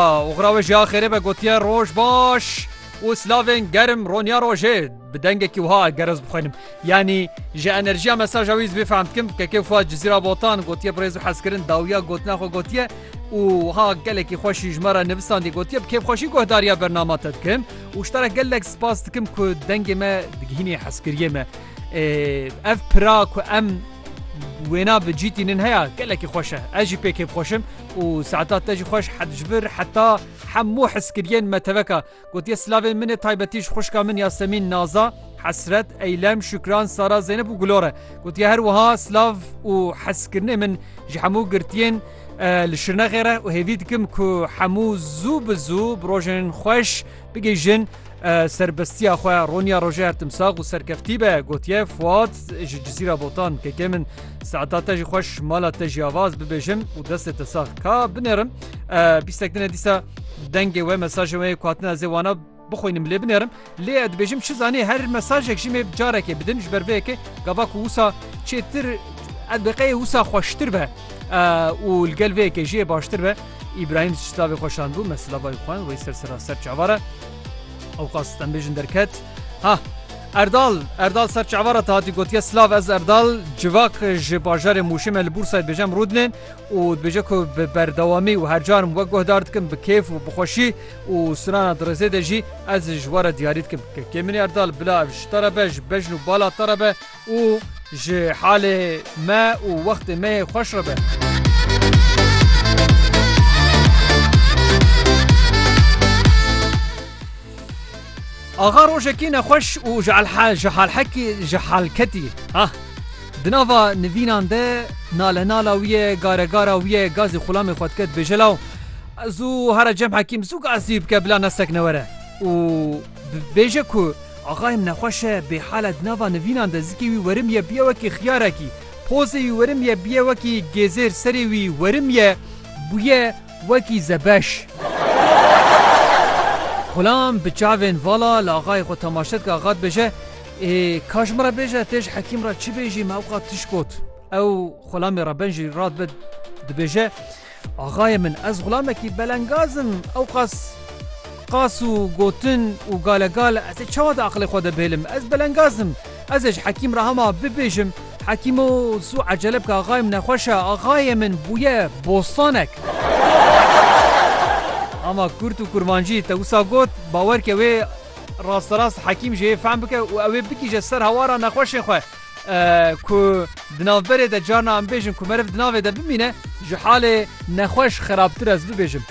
Oxira we jî a xêrê be gotiye roj baş û silavên germ roniya rojê bi dengekî wiha eger ez bixwenim yanî ji enerjiya mesaja wî zbê fehm dikim kekê xwe cizîra botan gotiye birêz û hezkirin dawiya gotina xwe gotiye û ha gelekî xweşî ji me re nivisan dî gotiye bi kêfxweşî guhdariya bernama te dikim û ji te re gelek spas dikim ku dengê me digihînî hezkiriyê me ev pira ku em wêna bi cîtînin heya gelekî xweş e ez jî pê kêfxweşim Û saeta te jî xweş hed ji vir heta hemû hizkiriyên me teveka. Gotiye silavên min ê taybetî ji xwişka min Yasemîn, Naza, Hesret, Eylem, Şükran, Sara, Zeynep û Gulor e. Gotiye her wiha silav û hezkirinê min ji hemû girtiyên li Şirnexê re û hêvî dikim ku hemû zû bi zû bi rojên xweş Bigihîjin serbestiya xwe Ronya Rojer Timsax û serkeftî be gotiye Fuat ji Cizîra Botan keke min seeta te jî xweş mala te jî avaz bibêjim û destê te sax ka binêrim bîstek dine dîsa dengê we mesajê wê ku hatina zê wana bixwînim lê binêrim lê ez dibêjim çi zanî her mesajek jî mê carekê bidin ji ber vê yekê gava ku wisa çêtir ez biqeyê wisa xweştir be û li gel vê yekê jiyê baştir be Îbrahîm ji silavê xwe şand bû, me silava jî xwend, wê ser sera ser çavar e. Ewqas stembêjin derket. Ha! Erdal! Erdal ser çavara te hatî gotiye silav ez Erdal civak ji bajarê Mûşê me li Bûrsayê dibêjem Rûdinê û dibêje ku bi berdewamî û her carim wek guhdar dikim bi kêf û bi xweşî û sirana dirêzê de jî ez ji we re diyarî dikim. Kekê min Erdal bila ev ji te re be, ji bejn û bala te re be. û ji halê me û wextê me yê xweş re be. Axa rojekî nexweş û ji halhekî ji hal ketî. Ah Di nava nivînan de nale nala wî ye gare gara wî ye gazî xulamê xwe dike dibêje law zû here cem hekîm zû gazî bike bila nesek newere û Bibêje ku axayem nexweş e, bêhal e, di nava nivînan de zikê wî werim ye bûye wekî xiyarekî, pozê wî werim ye bûye wekî gêzêr, serê wî werim ye bûye wekî zebeş. Xulam bi çavên vala li axayê xwe temaşe dike, axa dibêje, Ê ka ji min re bêje, tê ji Hekîm re çi bêjî, me ewqat tişt got. Ew xulamê re ben jî radibe dibêje, Axayê min ez xulamekî belengaz im ewqas qas û gotin û galegal ez ê çawa di aqilê xwe de bihêlim ez belengaz im ez ê ji hekîm re hema bibêjim hekîmo zû ecele bike axayê min nexweş e axayê min bûye bostanek hema kurt û kurmancî te wisa got bawer ke wê rasterast hekîm jê yê fehm bike û ew ê bigihîje ser hawara nexweşê xwe. Ku di navberê de carna em bêjin ku meriv di navê de bimîne ji halê nexweş xerabtir ez bibêjim.